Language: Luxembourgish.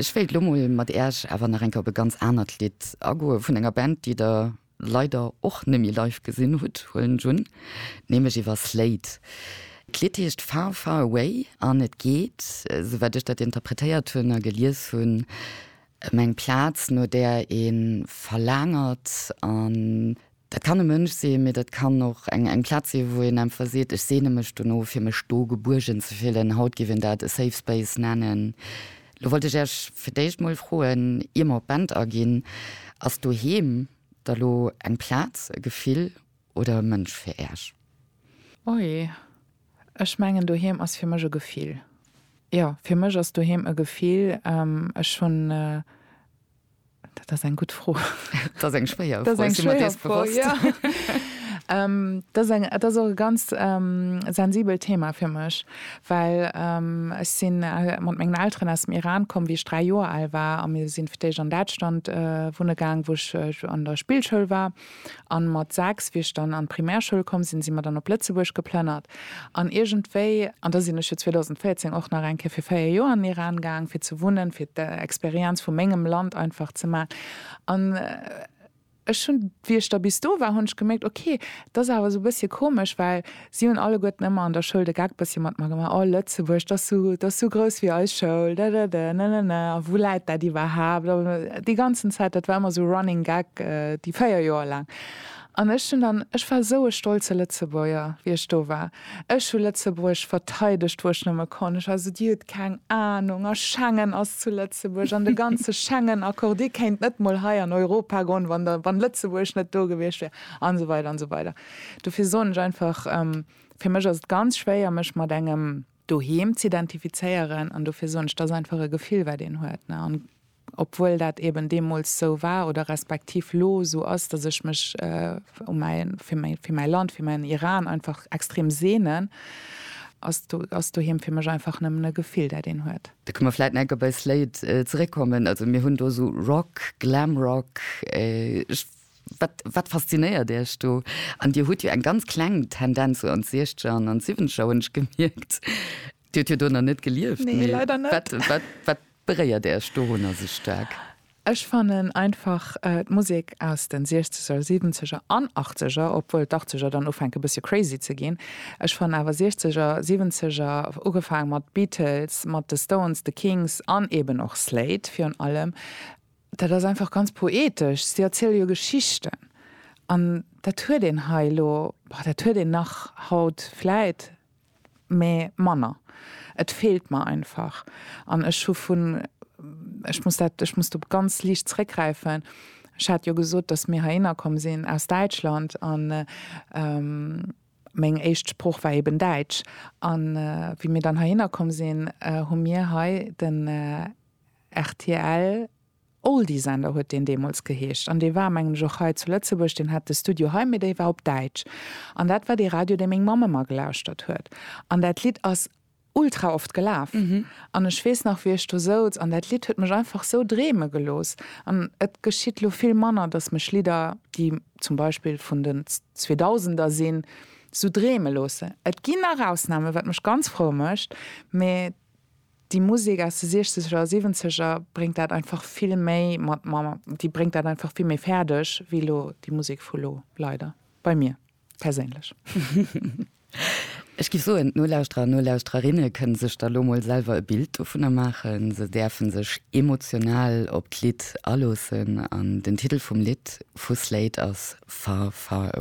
Ech wéilt elo mol mat äerch awer nach eng Kéier op e ganz anert Lidd agoe vun enger Band, déi der leider och neméi live gesinn hutt, huelen ech un, nämlech iwwer Slade. D'Lidd heescht Far Far Away an et geet, sou wat ech dat interpretéiert hunn a gelies hunn, ëm eng Plaz no där ee verlaangert an Dat kann e Mënsch sinn, mee dat kann och eng eng Plaz sinn, wou een einfach seet, ech seene mech dono fir mech do gebuergen ze fillen. Haut géif een dat e Safe Space nennen. Lo wollt ech Iech fir d'éischt mol froen, ier mer op d'Band aginn, Ass doheem da lo eng Plaz, e Gefill oder e Mënsch fir Iech? Ui, ech mengen doheem ass fir mech e Gefill. Jo, fir mech ass doheem e Gefill. Ech hunn Dat ass eng gutt Fro. Dat ass eng schwéier Fro. Dat ass och e ganz sensibelt Thema fir mech, well ech si mat mengen Elteren aus dem Iran komm, wéi ech dräi Joer al war, a mir sinn fir d'éischt an Däitschland wunne gaang, wou ech an der Spillschoul war. An mat 6, wéi ech dann an d'Primärschoul komm sinn, sinn mer dann op Lëtzebuerg geplënnert. An iergendwéi, an da sinn ech jo 2014 och nach eng Kéier fir 4 Joer an den Iran gaang fir ze wunnen, fir d'Experienz vu mengem Land einfach ze maachen. An ech hunn, wéi ech da bis do war, hunn ech gemierkt, ok, dat ass awer esou e bëssche komesch, well, Si hunn alleguerten ëmmer an der Schoul de Geck bëssi mat mer gemaach, Oh, Lëtzebuerg, dass sou, dass sou grouss wéi eis Schoul, dadada, nanana, a wou läit dat iwwerhaapt? A déi ganzen Zäit, dat war ëmmer sou Running Gag déi véier Joer laang. An ech hunn dann, ech war sou e stolze Lëtzebuerger, wéi ech do war. Ech hu Lëtzebuerg verteidegt, wou ech nëmme konnt. Ech war sou, Dir hutt keng Anung, a Schengen ass zu Lëtzebuerg, an de ganze Schengen-Accord, Dir kéint net mol hei an Europa goen, wann der, wann Lëtzebuerg net do gewiescht wär, an esou weider an esou weider. Dofir soen ech einfach, fir mech ass et ganz schwéier mech mat engem Doheem z'identifizéieren an dofir soen ech, et ass einfach e Gefill wat een huet ne an obwuel dat eben deemools esou war oder respektiv lo esou ass, datt ech mech u mäi fir mäi fir mäi Land, fir mäin Iran einfach extrem sehnen, ass do ass Doheem fir mech einfach nëmmen e Gefill dat een huet. Da kënne mer vläit nach eng Kéier bei Slate zeréckkommen. Also mir hunn do esou Rock, Glamrock, ech. Wat, wat faszinéiert Iech do? An Dir hutt jo eng ganz kleng Tendenz sou an d'Siechzeger an an d'Siwwenzeger, hunn ech gemierkt. Dir hutt jo do nach net gelieft, mee wat, wat, wat beréiert Iech dorunner sou staark? Ech fannen einfach d'Musek aus de Siechzeger, Siwwenzeger an Achtzeger, obwuel d'Achtzeger dann ufänke bëssche crazy ze ginn, ech fannen awer Siechzeger, Siwwenzeger, ugefaang mat Beatles, mat de Stones, de Kings an eeben och Slade virun allem, Dat ass einfach ganz poetesch. Si erziele jo Geschichten. An dat huet een hei elo, boah, dat huet een nach haut vläit, mä manner. Et feelt mer einfach. An ech hu vun, ech muss dat, ech muss do ganz liicht zréckgräifen, ech hat jo gesot, datt mir herinner komm sinn aus Däitschland an meng éischt Sprooch war eben Däitsch. An wéi mir dann herinner komm sinn, hu mir hei den, Rtl Oldiesender huet deen deemools geheescht an dee war mengen ech och hei zu Lëtzebuerg, deen hat de Studio hei, mee déi war op Däitsch an dat war dee Radio dee meng Mamm ëmmer gelauschtert huet an dat Lidd ass ultra oft gelaf an ech weess nach wéi ech do souz an dat Lidd huet mech einfach sou dreeme gelooss an et geschitt elo vill manner, datt mech Lidder déi zum Beispill vun den Zweedausender sinn sou dreeme loossen. Et ginn nach Ausnamen, wat mech ganz frou mécht, mee Déi Musek aus de siechzeger a siwenzeger bréngt dat einfach vill méi mat, ma déi bréngt dat einfach vill méi fäerdeg wéi elo déi Musek vu lo, leider, bei mir perséinlech. Ech géif soen, d'Nolauschterer an d'Nolauschtererinne kënne sech da lo mol selwer e Bild dovunner maachen. Se däerfe sech emotional op d'Lidd aloossen an den Titel vum Lidd vu Slade ass Far, Far.